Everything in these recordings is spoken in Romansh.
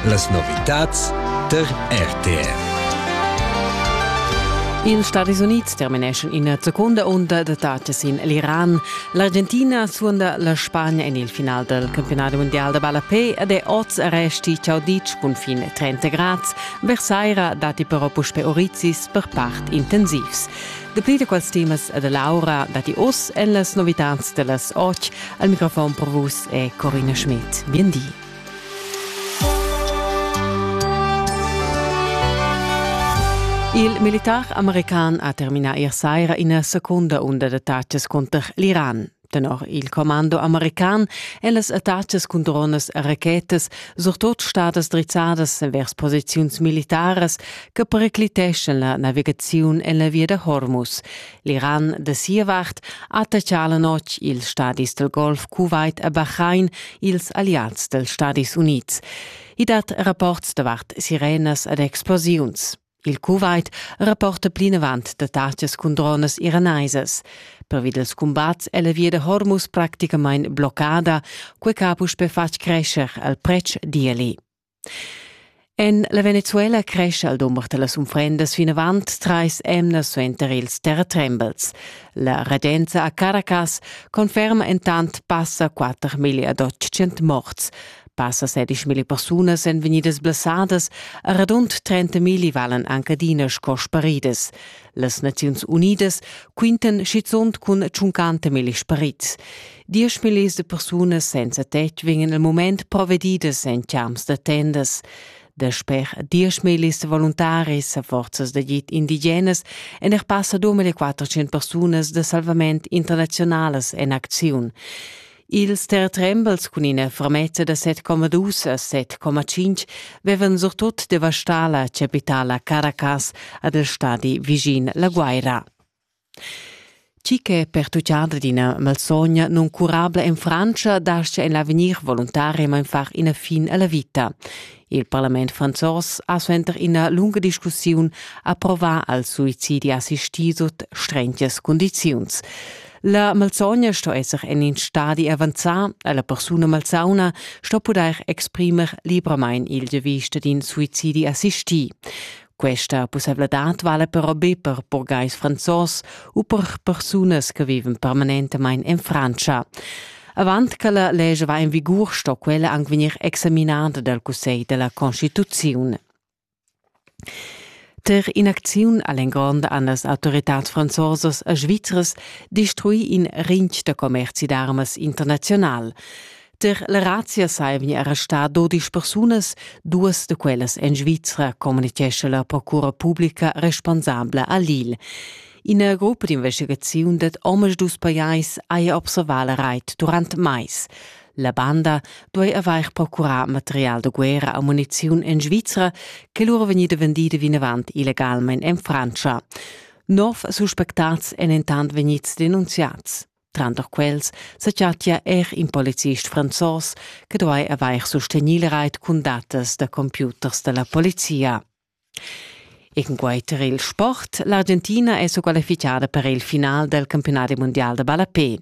Las novitads tar RTR. Ils Stadis Unids termineschan ina seconda unda d'attacas in l'Iran. L'Argentina suonda la Spagna en il final del campionat mondial da ballapé ed è oz resti ciaudic cun fin 30 grads. Versaira datti però puspè orizis per part intensivs. Dapli da quels temas e da l'aura datti oz en las novitads da las otg. Al microfon per vus è Corinna Schmidt. Bien di. Il militar american ha terminà ier saira ina secunda unda d'attacas cunter l'Iran. Tenor il commando american èn las attacas cun dronas e rachetas surtut stadas drizzadas envers posiziuns militaras che pericliteschan la navigaziun en la via da Hormuz. L'Iran da sia vart attaccà la notg ils stadis del Golf Kuwait e Bahrain ils alleats dels Stadis Unids. I dat rapports davart sirenas ed explosiuns. Il Kuwait rapporta plinavant datachas cun dronas iranaisas. Pervi dals cumbats è la via da Hormuz praticamain bloccada, quai che ha puspè fatg crescer al pretsch d'ieli. En la Venezuela crescha il dumber da las unfrendas vinavant trais emnas suenter ils terratrembels. La regenza a Caracas conferma entant passa 4 milliad 800 morts. Passa sedischmilli persunas èn vegnidas blessadas e radund 30.000 valan anc adina sco sparidas. Las Naziuns Unidas quintan schizunt cun 50.000 sparits. Dieschmillis de persunas senza tetg vegnan il moment provedidas en champs da tendas. Dasper dieschmillis voluntaris e forzas d'agid indigenas èn er passa 2400 persunas da salvament internazionalas en acziun. Ils tertrembels cun ina fermezza da 7,2 a 7,5 vevan surtut devastà la chapitala Caracas ad el stadi vischin la Guaira. Chi che pertuccada d'ina malsogna nuncurabla en Francia dascha en l'avegnir voluntaremain far ina fin alla vita. Il parlament franzos ha suenter ina lunga discussiun approvà al suicidi assistì sut strengias condiziuns. La malsogna sto esser en in stadi avanzà e la persuna malsauna sto pudair exprimer libramain il giavisch d'in suicidi assistì. Questa pussaivladad vala però be per burgais franzos u per persunas che vivan permanentamain en Frantscha. Avant che la legge va in vigur sto quella anche vegnir examinada dal Cussegl della Constituzione. Per inacziun all'ingrond an las autoritats franzosas a Svizras destrui in rinch da commerci d'armas international. Der la razia saivia era sta dodisch persunas, duas de quellas en Svizra, communichesce la procura publica responsabla a Lille. Ina gruppa d'investigaziun dat omas dus pajais aia observà la reit durant mais. La banda duei avair procurar material de guerra a muniziun en Svizra, che lura vegnida vendida vinavant illegalmein en Francia. Nov suspectats èn intant vegnids denunziats. Tranter quels sa chattia er in policist franzos che duai avair sustegnì il rait cun datas da computers da la polizia. Enquanter il sport, l'Argentina è squalificada per il final del campionati mondial da ballapé.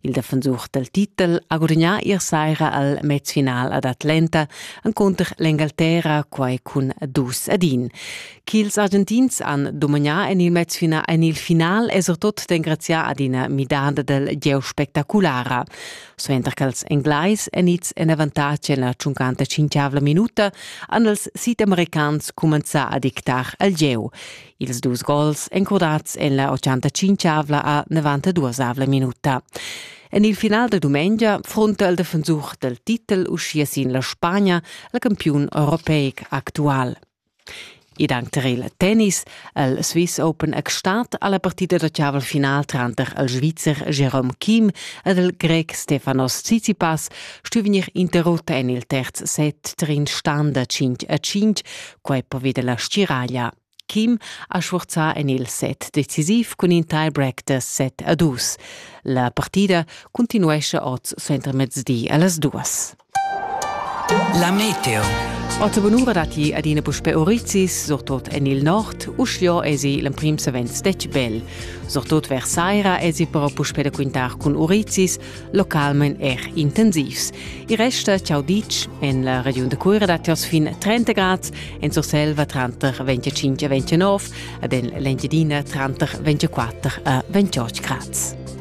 Il defensur del titel ha gudagnà ier saira al mezfinal ad Atlanta encunter l'Engalterra, quai cun dus ad in. Ch'ils Argentins han dumagnà en il mezfinal, en il final è surtut d'engraziar ad ina midada del gieu spectaculara. Suenter ch'ils Englais èn ids en avantatg en la tschuncanta cinquiavla minuta, han els sidamericans cumenzà a dictar al gieu. Ils dus gols encurdads en la 85avla a 92avla minuta. En il final de dumengia fronta il defensur del titel uschia sin la Spagna, la campiun europeic actual. Ed anc tar il tennis ha il Swiss Open exstat a la partida da chaval final tranter il Svizzer Jerome Kim ed il Grec Stefanos Tsitsipas stu vegnir interrutta en il terz set tar in stan da 5 a 5. Quai poveda la stiraglia. Kim ha sfurzà en il set decisiv cun in tie-break da 7 a 2. La partida cuntinuescha oz suentermezdi a las duas. La meteo. Otta bunura datti adina puspè orizis, surtut en il nord. Uschia esi l'emprim savens stec bel. Surtut vers saira esi però puspè da quintar cun orizis, localment er intensivs. Il resta ciao ditg en la regiun da Cuira datti oz fin 30 grad, en Surselva tranter 25 e 29 ed en l'Engiadina tranter 24 e 28 grad.